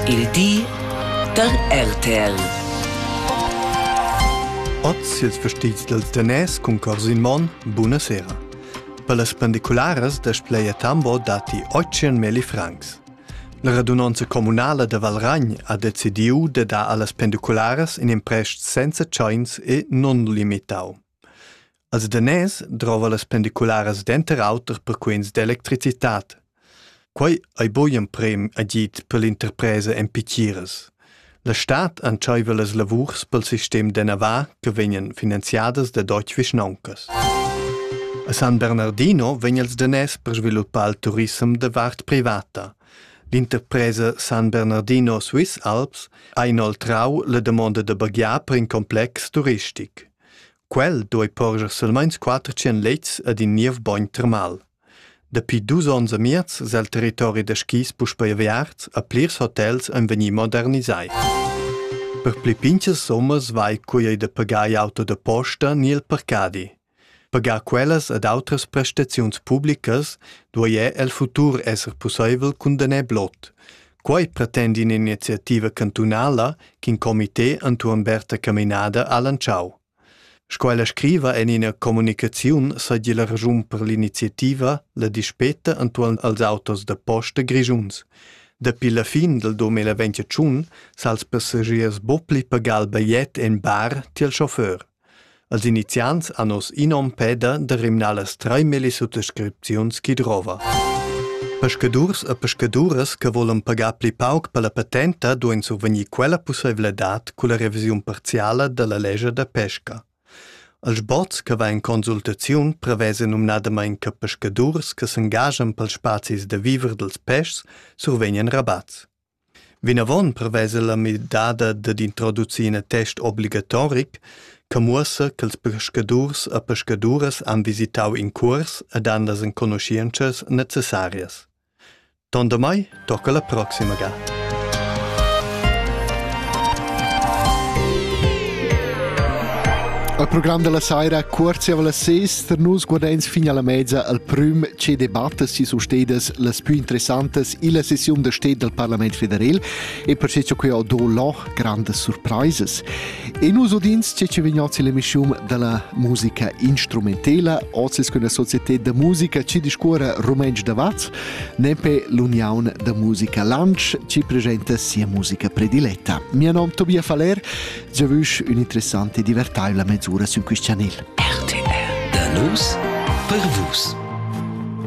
Il di da RTL. Oz ils vestits dals daners cun cors in mon, buna sera. Per las pendicularas da Spleia Tambo datti 800.000 francs. La radunanza communala da Valragn ha decidiu de dar allas pendicularas in imprest senza tschains e non limitau. Els daners drova las pendicularas denter auter per quens d'electricitat. Quei ei buc in prem agid per l'interpresa en pitgiras. La stad entscheiva las lavurs pel sistem de Navar che vegnan finanziadas da Deutsche Vischnauncas. A San Bernardino vegn els daners per sviluppar il turissem de vart privata. L'interpresa San Bernardino Swiss Alps ha inoltrau la damonda da baghiar per in complex turistic. Quel duei porscher silmeins quater tschien lets ed in niev bogn termal. Dapi dus onns e miez sel territori da skis puspei aviarts e plirs hotels ein vegni modernisai. Per pli pintgas summas vai cui ei da pagar il auto da posta ni il parcadi. Pagar quellas ed outras prestaziuns publicas duei el futur esser pusseivel cun daner blot. Quei pretend in'iniziativa cantunala ch'in comité entuorn Berta Caminada ha lantschau. Sco ella scriva en ina communicaziun seigi la raschun per l'iniziativa la dispeta entuorn als autos da posta grischuns. Dapi la fin del 2021 s'ha els passagiers bo pli pagal bajet en bar tiel chauffeur. Als iniziants han oz in onn peda da rimnar las treimellis suttascripziuns chi drova. Peschadurs e pescaduras che volan pagar pli pauc per la patenta duain survegnir quella pussaivladad culla revisiun parziala da la lescha da pesca. Als bots che va in consultaziun prevesa numnadamain che pescadurs che s'engaschan pels spazis da viver dels peschs survegnan rabats. Vinavon prevesa la midada dad introducir in attest obligatoric che muossa ch'ils peschadurs e pescaduras han visitau in cuors ed han las enconuschientschas necessarias. Tondamai tocca la proxima ga. Al program della saira cuorzi alla sest nus guardeins fin alla mezza al prüm che debattas si su stedas las più interessantas illa sessiun da sted dal Parlament federal e per che quai ho do là grandas surpraisas. E nus udins che ci vegnots l'emissiun dalla musica instrumentela, ozis con la società da musica ci discuora rumentsch da Vaz, nempe l'Union da musica Lansch ci presenta sia musica prediletta. Mio nom Tobias Faller, già vusch un'interessante e divertaivla mezz'ura su quist chanel. RTL, da nus per vus.